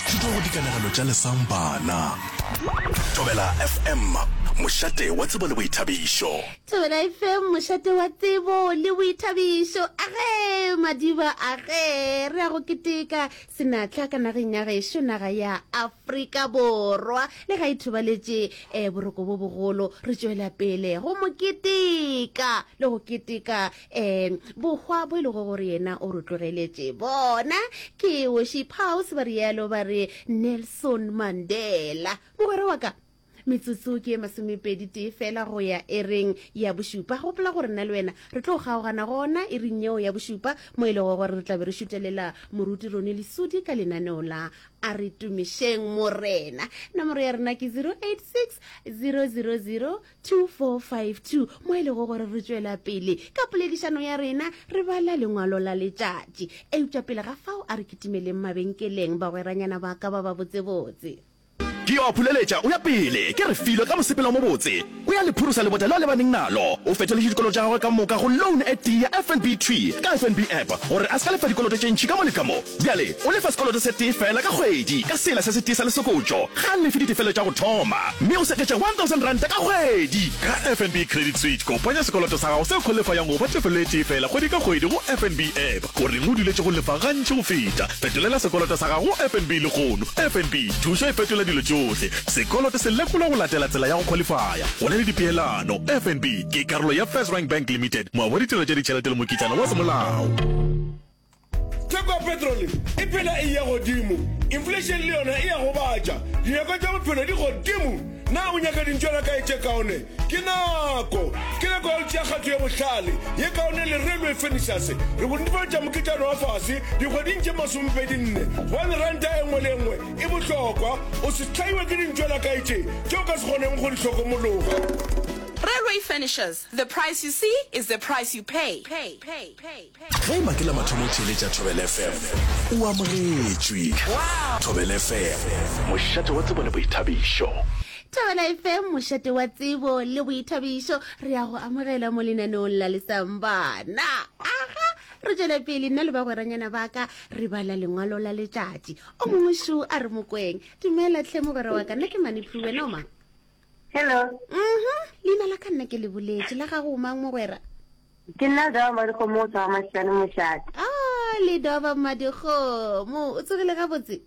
Thuto go dikanegelo tša lesang bana. Thobela FM, mošate wa tsebo le boithabišo. Thobela FM, mošate wa tsebo le boithabišo. Age madiba age re a go keteka senatla ka nageng ya gešo naga ya Afrika Borwa le ga ithobaletše um boroko bo bogolo re tšwela pele go mo keteka le go keteka um bohwa bo e lego gore yena o re tlogeletše bona ke woši paus ba rialo ba re nelson mandela mogwera wa ka metsotso ke e masomepedi tee fela go ya e reng ya bošupa gopola gore nna le wena re tlo kgaogana gona e reng yeo ya bošupa mo e lego gore re tlabe re šutelela moruti rone lesudi ka lenaneo la a re tumišeng morena nomoro ya rena ke 086 000 2452 mo e lego gore re tšwela pele ka poledišano ya rena re bala lengwalo la letšatši. Eupša pele ga fao a re kitimeleng mabenkeleng bagweranyana ba ka ba babotsebotse. Ke yo a phuleletša, o ya pele, ke re filo ka mosepelo o mobotse, o ya le phurusa lebota le a lebaneng nalo. O fetoletše dikoloto tša gagwe ka moka go loan e tee ya FNB Tree ka FNB App gore a se ka lefa dikoloto tše ntši ka mo le ka mo. Bjale o lefa sekoloto se tee feela ka kgwedi ka sela se se tee sa lesokotšo. Ga lefe ditefelo tša go thoma, mme o seketša R1,000 ka kgwedi. Ka FNB Credit Switch, kopanya sekoloto sa gago seo go lefa yang go ba tefelo e tee feela kgwedi ka kgwedi go FNB app. O reng o duletše go lefa gantši go feta? Fetolela sekoloto sa gago go FNB lehono. FNB, thušo e fetola dilo tšohle. Sekoloto se lekolwa go latela tsela ya go khwalifaya. Go na le dipeelano. FNB ke karolo ya FirstRand Bank Limited, moabi wa ditirelo tša ditšhelete le mokitlana wa semolao. theko ya petrole e phela e ya godimo inflation le yona e ya go batša dinyako tša bophelo di godimo na o nyaka dintšwana ka etše kaone ke nako ke nako ya go tšea kgatho ya bohlale ye kaone le railway furnitures re go netefatša moketšano wa fase dikgweding tše masomepedi nne gobane ranta e nngwe le e nngwe e bohlokwa o se tlhaiwe ke dintšwana ka etše tše o ka se kgoneng go di hlokomologa Railway furnitures, the price you see is the price you pay. pay, pay, pay. Ge e ba ke la mathomo o theeletša Thobela FM, o amogetšwe. Thobela FM, mošate wa tsebo le boithabišo. Thobela FM, mošate wa tsebo le boithabišo. Re a go amogela mo lenaneong la Lesambana. Aha! Re tšwele pele, nna le bagweranyana ba ka re bala lengwalo la letšatši. O mongwe šo a re, Mokweng, dumela tlhe mogwera wa ka, nna ke Maniplu, wena o mang? Hello. Mhm. Leina la ka nna ke le boletse la gago mang mogwera? Ke nna Dova Madikgomo o tswa Mashane Moshate. Ah, le Dova Madikgomo. O tsogile ga botse?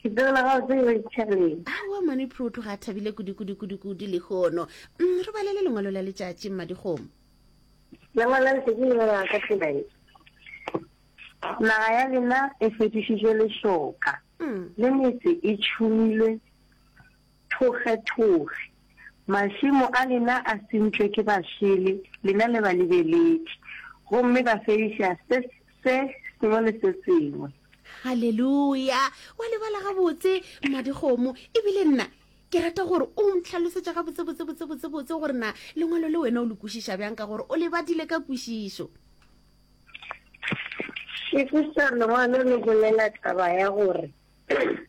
Ke tsogile ga botse yo itshale. Ah, wa mane phurutu ga thabile kudi kudi kudi kudi le gono. Mm, re balele lengwalo la letšatši Madikgomo. Lengwalo la letšatši le ba ka tsela e. Naga ya lena e fetišitšwe lešoka. Mm. Le metse e tšhumilwe Thogetoge. Mašemo a lena a sentšwe ke bašele, lena le balebeledi, gomme ba fediša se, se sengwe le se sengwe. Haleluya! Wa lebala gabotse, mmadikgomo. E bile nna ke rata gore o ntlhalosetše gabotsebotse, botsebotsebotse gore na Lengwalo le wena o le kwešiša bjang, ka gore o le badile ka kwešišo. Šefiša, Lengwalo le bolela taba ya gore.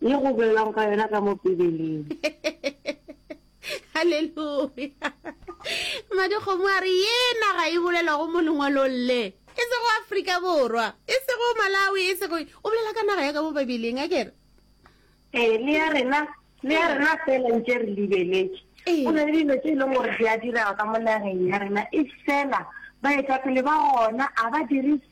Ye go boelwago ka yona ka mo Pibeleng. Haleluya! Madikgomo a re ye naga e bolelwago mo lengwalong le, e sego Afrika Borwa, e sego Malawi, e sego. O bolela ka naga ya ka mo Bibeleng, a kere? Ee, le ya rena, le ya rena fela ntše re libeletše. Ee. Go na le dilo tše e leng gore di a direga ka mo nageng ya rena, e fela baetapele ba gona a ba dire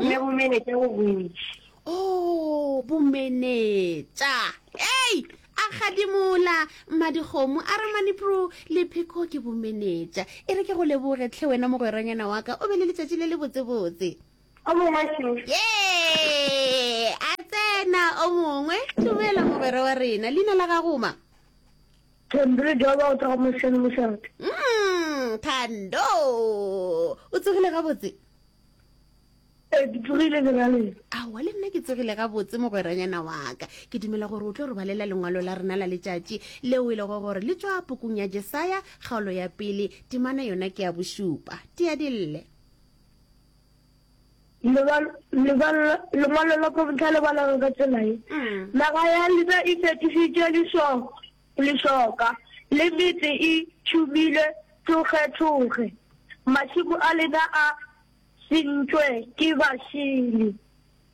ne bomenetša go bontši o oh, bomenetša ei a gadimola madikgomo a re manipro lepheko ke bomenetša e re ke go leboge tlhe wena mogweranyana wa ka o be le letšatši le le botsebotse o mongwe ee a tsena o mongwe dumela mogwera wa rena leina la gagoma thando joba o tsa go mošhane mošate mm, thando o tsogile gabotse ee ke tsogile le ra leng aowa le nna ke tsogile gabotse mogweranyana waka ke dumela gore o tlo re balela lengwalo la rena la letšatši leo e lego gore le tswa pokong ya jesaya kgaolo ya pele temana yona ke ya bošupa tea dille lengwalo la kontla le balaga ka tselae mm. naga ya lena e fetišitše diso lešoka, le metse e tšhumilwe thokgethokge, mašemo a lena a sentšwe ke bašili,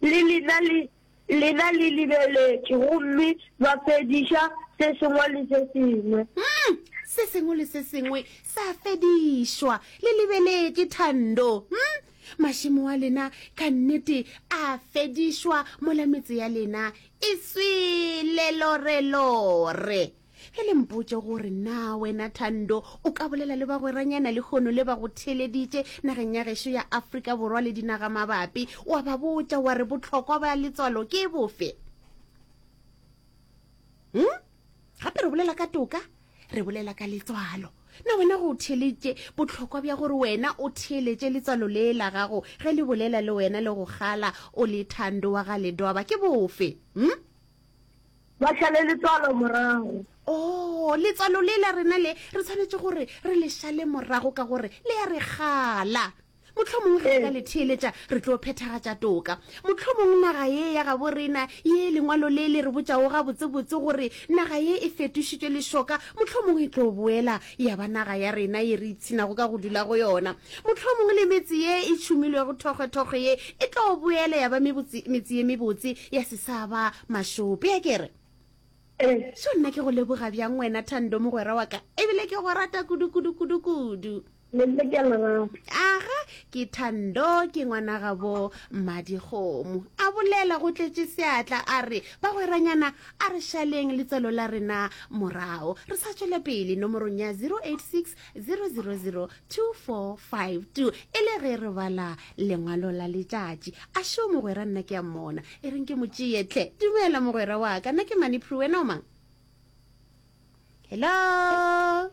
le lena le lena le lebeletše gomme ba fediša se sengwe le se sengwe. Umm, se sengwe le se sengwe sa fedišwa, le lebeletše, Thando. Umm. Mašemo a lena ka nnete a fedišwa mola metse ya lena e swele lorelore. Ge le mpotše gore na wena Thando o ka bolela le bagweranyana lehono le ba go theeleditše nageng ya gešo ya Afrika Borwa le dinagamabapi, wa ba botša wa re bohlokwa ba letswalo ke bofe? Hm? gape re bolela ka toka re bolela ka letswalo na wena go theeletše bohlokwa bja gore wena o theeletše letswalo le la gago ge le bolela le wena le go gala o le thando wa ga ledoaba ke bofe hm ba šale letswalo morago o oh, letswalo le la rena le re tshwanetše gore re le šale morago ka gore le ya re gala Mohlomongwe ge re ka le theeletša, re tlo phethagatša toka. Mohlomongwe naga ye ya gabo rena, ye lengwalo le le re botšago gabotsebotse gore naga ye e fetošitšwe lešoka, mohlomongwe e tlo boela ya ba naga ya rena ye re ipshinago ka go dula go yona. Mohlomongwe le metse ye e tšhumilwego thokgwethokgwe ye e tlo boela ya ba mebotse, metse ye mebotse ya se sa ba mašope. A ke re? Seo nna ke go leboga bjang wena, Thando, mogwera wa ka, e bile ke go rata kudu, kudu, kudu, kudu. Le le ka lerato. Aga, ke Thando, ke ngwana gabo Mmadikgomo. A bolela go tletše seatla a re, Bagweranyana, a re šaleng letswalo la rena morago, re sa tšwele pele nomorong ya 086 000 2452 e le ge re bala lengwalo la letšatši. A šo mogwera nna ke a mmona. E reng ke mo tšee hle. Dumela mogwera wa ka, nna ke Maniprue, wena o mang? Hello?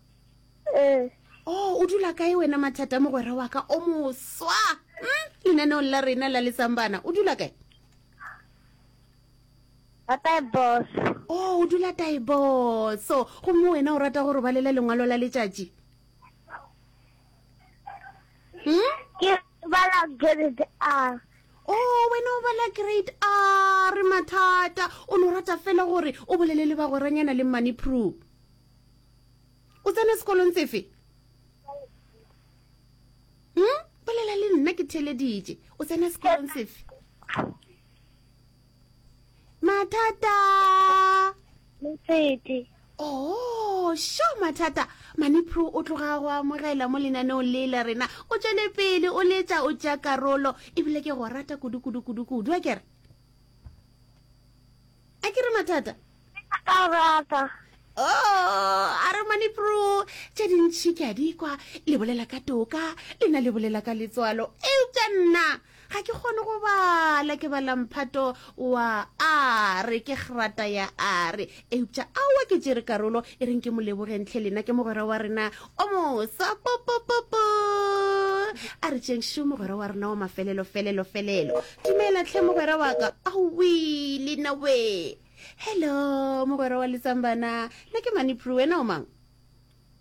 ee oh o dula kae wena mathata mogwera wa ka o moswa hmm? lenaneong la rena la letsambana o dula kae oh o dula taiboso gomme wena o rata gore ba lela lengwalo la letšatši hmm? o oh, wena o bala grade r mathata o ne o rata fela gore o bolele le bagweranyana le money proof o tsene sekolong sefe hmm? bolela le nna ke theleditše o tsene sekolong sefe mathata motsete oh sho mathata manipro o tloga go amogela mo lenaneong le la rena o tswele pele o letša o tša karolo ebile ke go rata kudu kudu kudu kudu a kere a ke re mathata ka rata oh a re mane pro tše dintšhi ke a di kwa le bolela ka toka lena le bolela ka letswalo eupša nna ga ke kgone go bala ke bala mphato wa a re ke grata ya a re eupša aowa ke tšere karolo e reng ke molebogentlhe lena ke mogwera wa rena o mosa popopopo a re tšengšo mogwera wa rena wa mafelelo felelo felelo Dumela tlhe mogwera wa ka. Awii le nna wee. Hello mogwera wa Letsambana. Nna ke Manipru wena o mang?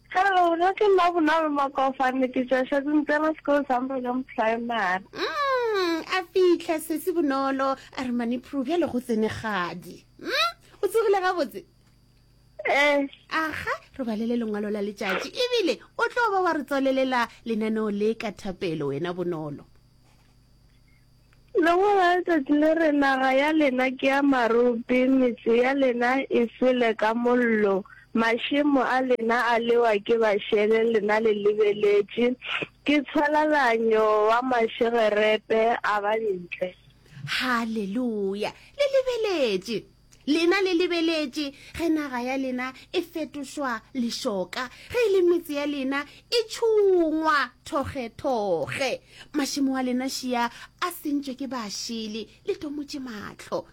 Hello nna ke nna Bonolo Makofane ke tšwa Shazimtela School Zambrelong Primary. Umm a fitlha sesi Bonolo a re Manipru bjale go tsene kgadi. Umm o tsogile gabotse? Ee. Aga re balele lengwalo la letšatši ebile o tlo ba wa re tswalelela lenaneo le ka thapelo wena Bonolo. Lengwe la letsatsi le re, Naga ya lena ke ya marope, metse ya lena e swele ka mollo, mašemo a lena a lewa ke bašele, lena le lebeletše, ke tshwalalanyo wa mašegerepe a ba ntle. Haleluya! Le lebeletše! Lena le lebeletše ge naga ya lena e fetošwa lešoka, ge e le metse ya lena e tšhungwa thokgethokge. Mašemo a lena šia a sentšwe ke bašili, le tomotše mahlo.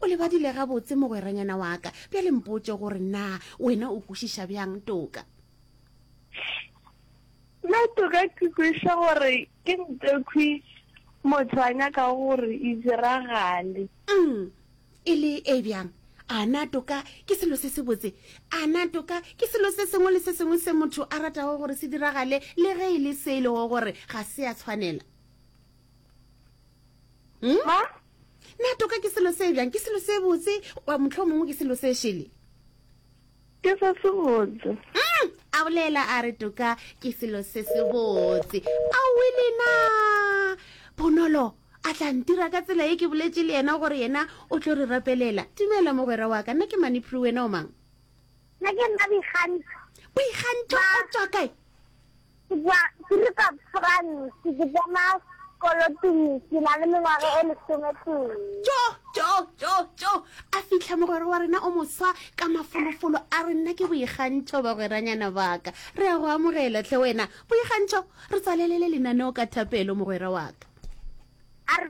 O lebadile gabotse, mogweranyana wa ka, bjale mpotše gore na wena o kwešiša bjang toka. Nna toka ke kwešiša gore ke ntekhwi motho a nyakago gore e diragale. Umm, E le e bjang? A na toka ke selo se sebotse? A na toka ke selo se sengwe le se sengwe se motho a ratago gore se diragale le ge e le se e lego gore ga se a tshwanela? Hmm? Ma? Na toka ke selo se bjang? Ke selo se botse? Wa motlho mongwe ke selo se šele? Ke se sebotse. Mm, a bolela a re toka ke selo se sebotse. A wele na Bonolo a tla ntira ka tsela e ke boletse le yena gore yena o tlo re rapelela. Dumela mogwera wa ka, nna ke Manipru wena o mang? Nna ke nna Boikgantšho. Boikgantšho o tswa kae? Ke tšwa Kruger, France. Ke tsena sekolo Tumi ke na le mengwaga e lesometee. Tjo, tjo, tjo, tjo! A fihla mogwera wa rena o moswa ka mafolofolo, a re, Nna ke Boikgantšho, bagweranyana ba ka. Re a go amogela, hle wena, Boikgantšho. Re tswalelele lenaneo ka thapelo, mogwera wa ka. A re,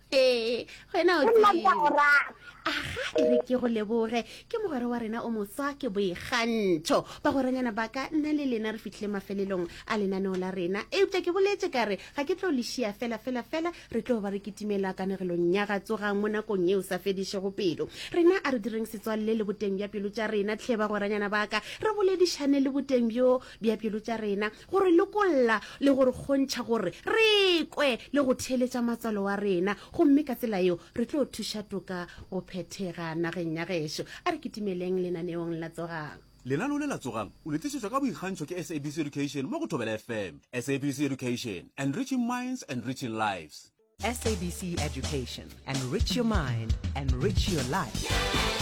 ee wena o aga e re ke go leboge ke mogwera wa rena o moswa ke boikgantšho bagweranyana ba ka nna le lena re fitlhile mafelelong a lenaneo la rena eupša ke boletse ka re ga ke tlo lešia fela fela fela re tlo ba re kitimela kanegelong ya ga tsogang mo nakong yeo sa fedišego pelo rena a re direng setswalle le boteng bja pelo tša rena tlhe bagweranyana ba ka re boledišane le boteng bjo bja pelo tša rena go re lokolla le go re kgontšha gore re kwe le go theeletša matswalo wa rena, gomme ka tsela yeo re tlo thuša toka go phethega nageng ya gešo. A re kitimeleng lenaneong la Tsogang! Lenaneo le la Tsogang! o le tlišetšwa ka boikgantšho ke SABC Education mo go Thobela FM. SABC Education, Enriching Minds, Enriching Lives. SABC Education, Enrich your mind, enrich your life.